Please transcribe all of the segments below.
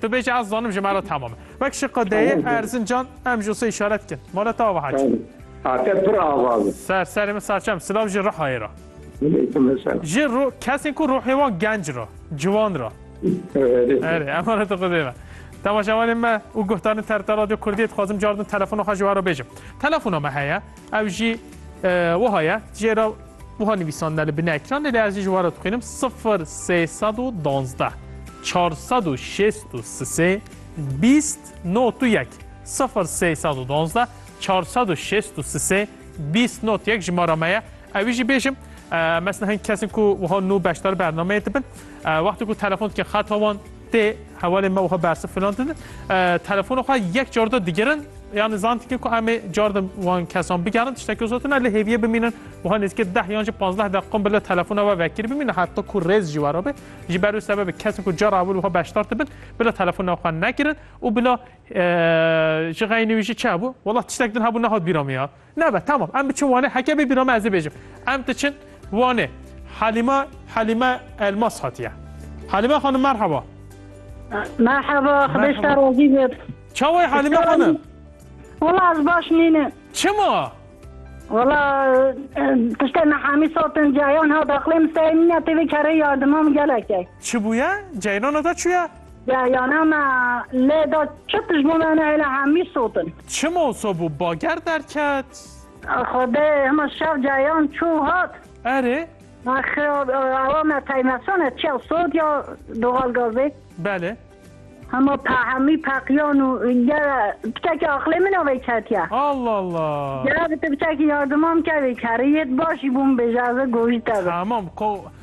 Tu bêje ez zanim ji me re tamam e. Wek şiqe deyê Erzincan em ji wisa îşaret dikin. Maleta ava hacî. Ate pir ava bi. Ser serê min saçem silav ji Rihayê re. Ji ro kesên ku rohê wan genc re, ciwan re. Erê emaneta xwedê be. Temaşevanên me û guhdarên TRT Radyo Kurdiyê dixwazim car din telefona xwe ji we re bêjim. Telefona me heye. Ev jî wiha ye jê re wiha nivîsandine li binê ekranê lê ez jî ji wan re dixwînim sifir sê sed û duwazdeh çar sed û şêst û sisê bîst not û yek sifir sê sed û duwazdeh çar sed û şêst û sisê bîst not yek jimara me ye ewî jî bêjim mesna hin kesin ku wiha nû beşdar bernameyê dibin wextê ku telefon dikin xeta wan Tê hevalê me wiha bersiv filan din. Telefona xwe yek car de digirin yani zantikê ku em ê car de wan kesan bigerin tiştekî zot ne lê hêviyê bimînin wiha nêzîkê deh yan jî panzdeh deqan bile telefona we vekir bimînin heta ku rêz jî wera bê ji ber wê sebebê kesên ku cara ewil wiha beşdar dibin bila telefona xwe nekirin û bila ji xeynî wî jî çi hebû wela tiştek din hebû nehat bîra min ya Nebe tamam em biçin Wanê heke bibîna me ez ê bêjim. Em diçin Wanê. Halîma Halîme Elmas hatiye. Halîme xanim merheba. Merheba, xbeş te rozî bêt. Çawayê Halîme xanim? Wala ez baş nînim. Çima? Wala tiştê nehamî sotin cayan ha daxlê min sey nîne têvê kerê yardimam gelekê. Çi bûye? Ceyrana da çûye? Yayana me lê da çi tişt bo me nehêle hemî sot in. Çi moso bû bager derket. Xwedê hima şev cayan çû û hat. Erê. Ax awa me peymesan e çiya sot ya doxal gazê. Belê. Hima pe hemî peqiyan û gera pitekî aqlê min a vê ketiya. Allah Allah. Gera bi tu pitekî yardiman ke vê kerê yê tu baş jî bo min bêje ez ê gojî te bi. Tamam ko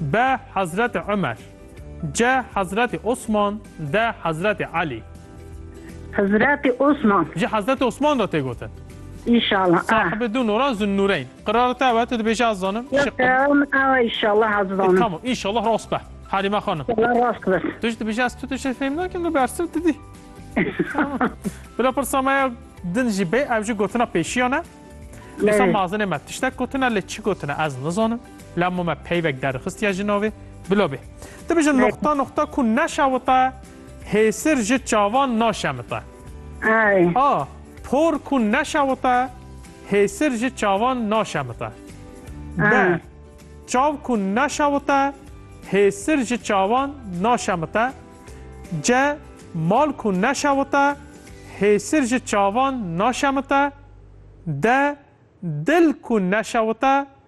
Be Hezretê Umer. Ce Hezretê Osman. De Hezretê Elî. Hezretê Osman. Ji Hezretê Osman re tê gotin. Înşallah. Sahibê du nûran Zunnûreyn. Qirareta ew e tu dibêjî ez zanim. Yok Şiq. em ew inşallah ez E zanim. tamam înşallah rast be. Halîme xanim. Allah rast bes. Tu ji dibêjî ez tu tu jê fêm nakim tu bersiv tu dî. Tamam. Bila pirsa me ya din jî bê ew jî gotina pêşiyan e. Dîsa Lê. mazinê me tiştek gotine lê çi gotine ez nizanim. La ma me peyvek derxistiye ji navê. Bila bê. Tu bijin noxta noxta ku neşewite hêsir ji çavan naşemite. A. Por ku neşewite hêsir ji çavan naşemite. B. Çav ku neşewite hêsir ji çavan naşemite. C. Mal ku neşewite hêsir ji çavan naşemite. D. Dil ku neşewite